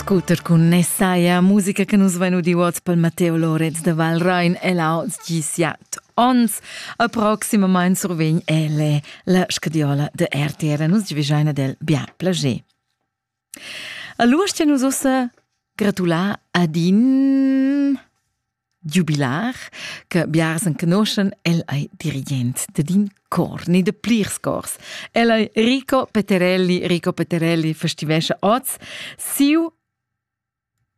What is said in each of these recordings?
Scooter cun Nessaia, musica che nus vein udiu oz pel Matteo Lorenz da Valrein e là oz gi siat onns. A proximamain survegn elle la scadiola da RTR. Nus givegiain ad el bien plager. A l'urstia nus ussa gratular ad in Giubilar che biars enconoschen, el ei dirigent dad in cor, ni de plirs cors. El ei Rico Peterelli. Rico Peterelli festivescha oz siu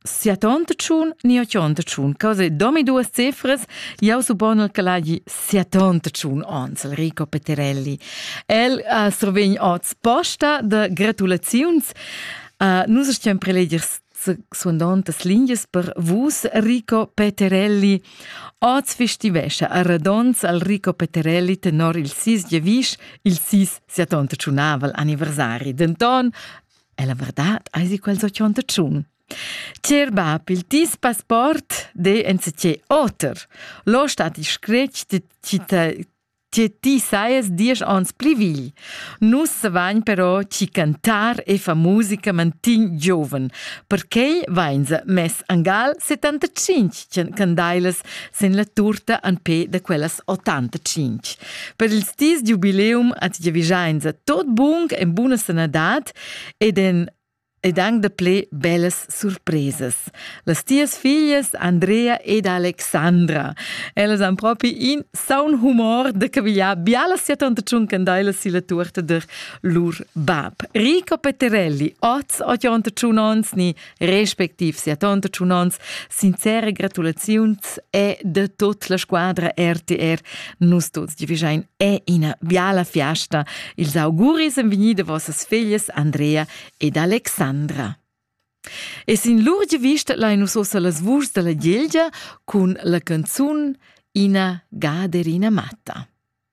siatontatschun ni ochontatschun. Cose domi duas cifras, jau supponel che l'hagi siatontatschun ons, il Rico Peterelli. El uh, survegn oz posta de gratulaziuns. Uh, nus stiam preleger suondantas lingias per vus Rico Peterelli. Oz festivescha a Radons al Rico Peterelli tenor il sis Jevisch il sis siatonta tsunavel anniversari. Denton, è la verdad, eisi quel so tionta tschun. Cer bab, il tis passport de ensetie oter. Lo stat il scretg de Tie ti saies diesch ons pli vegl. Nus savagn però ci cantar e fa musica mantin gioven. Perquei vain se mess angal 75 candailas sen la turta an pe da quellas 85. Per il stis giubileum at giavigiain se tot bung en buna sanadad ed en ed anc daplè bellas surpresas. Las tias figlias Andrea ed Alexandra, ellas han propi in saun humor da cavigliar bialas siatanta tschuncandelas silla tuorta der lur bab. Rico Petterelli, oz ottanta tschun ons ni respectiv siatanta tschun ons, sincere gratulaziuns e de tot la squadra RTR Nus tuts divigein è ina biala fiasta. Ils auguris en vigni de vossas figlias Andrea ed Alexandra. E sin lur vista lai nus ossa las vuschs della Gilgia cun la canzun Ina gaderina matta.